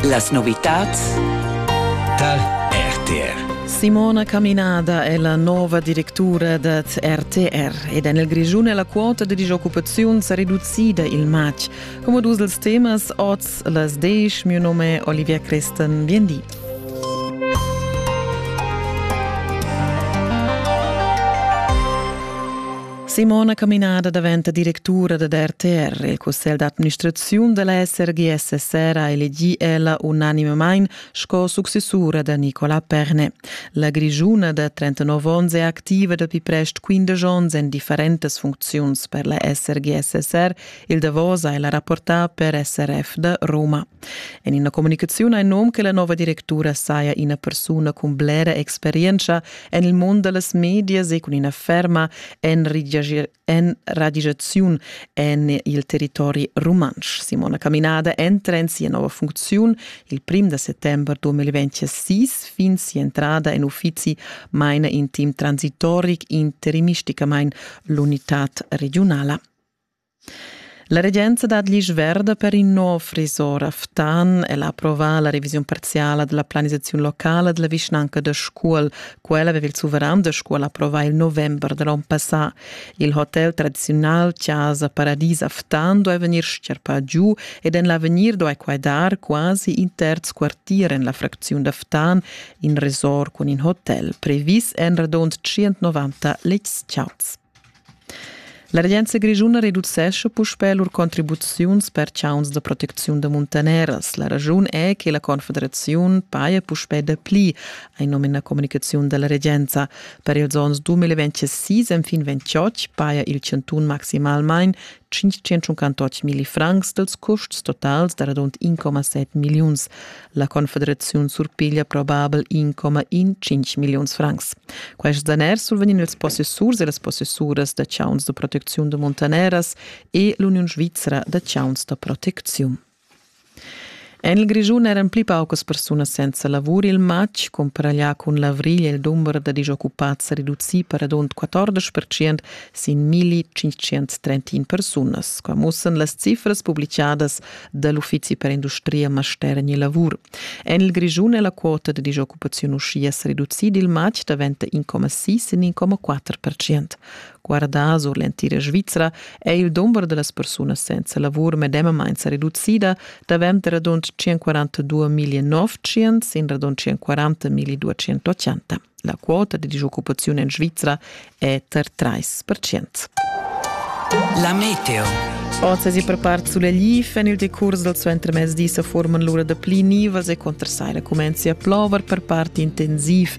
Las novitads tar RTR. Simona Caminada è la nova directura da RTR ed en il Grischun è la quota da disoccupaziun sa reducida il matg. Come dus dels temas oz las desch, mio nome è Olivia Christen, bien di. Simona Caminada daventa directura da RTR. Il cussegl d'administraziun da la SRGS sera elegì ella unanimamain sco successura da Nicola Perne. La grigiuna da 39 onns è activa dapi prest 15 onns en differentas funcziuns per la SRGS SR. Il davos è la rapporta per SRF da Roma. En ina comunicaziun ha il num che la nova directura saja ina persuna cun blera experienza En il mund da las medias e cun ina ferma enradisaziun en il territori rumantsch. Simona Caminada entra en sia nova funcziun il prim da settembre 2026 fin sia entrada en uffizi maina in team transitoric interimisticamain l'unitad regionala. La regenza dat l'isch verda per in nov resort a Ftan. El ha approvà la revisiun parziala della planisazione locala della vischnanca da Scuol. Quella aveva il suveran da Scuol approvà il november dell'onn passà. Il hotel tradizional Chiasa Paradis a Ftan doveva vegnir scherpà giù ed en l'avegnir doveva quai dar quasi in terz quartier en la fracziun da Ftan, in resort cun in hotel previs en radund 190 lezchats. La regenza grischuna reducescha puspè lur contribuziuns per chauns da protecziun da muntaneras. La raschun è che la Confederaziun paja puspè dapli, hai num ina communicaziun da la regenza. Per ils onns 2026 enfin 2028 paja il chantun maximalmain 580 milli francs dels custs totals da radund 1,7 milliuns. La Confederaziun surpiglia probabel 1,15 milliuns francs. Quests daners survegnin ils possessurs e las possessuras da chauns de protecziun de montaneras e l'Uniun Svizra da chauns da protecziun. En il Grischun eran pli paucas persunas senza lavur. Il matg cumparaglià cun l'avrigl è il dumber da disoccupads reducì per radund 14 percent sin 1531 persunas. Qua mussan las cifras publicadas da l'Uffizi per industria, master e lavur. En il Grischun è la quota da disoccupaziun uschia sa reducida il matg davent da 1,6 in 1,4 percent. Guardà sur l'entira Svizra è il dumber da las persunas senza lavur medemamain sa reducida davent radund 142.900 sin radund 140.280. La quota da disoccupaziun en Svizra è tar 3%. La meteo. Oz si per part sulle glif en il decurs del suo entremezdi se forman l'ora da pli nivas e contra sai la comenzi a plover per part intensiv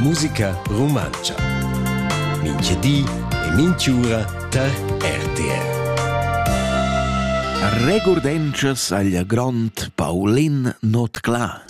Musica rumantscha. Mincha di e minch'ura tar RTR. Regurdenschas agl grond Paulin Notclà.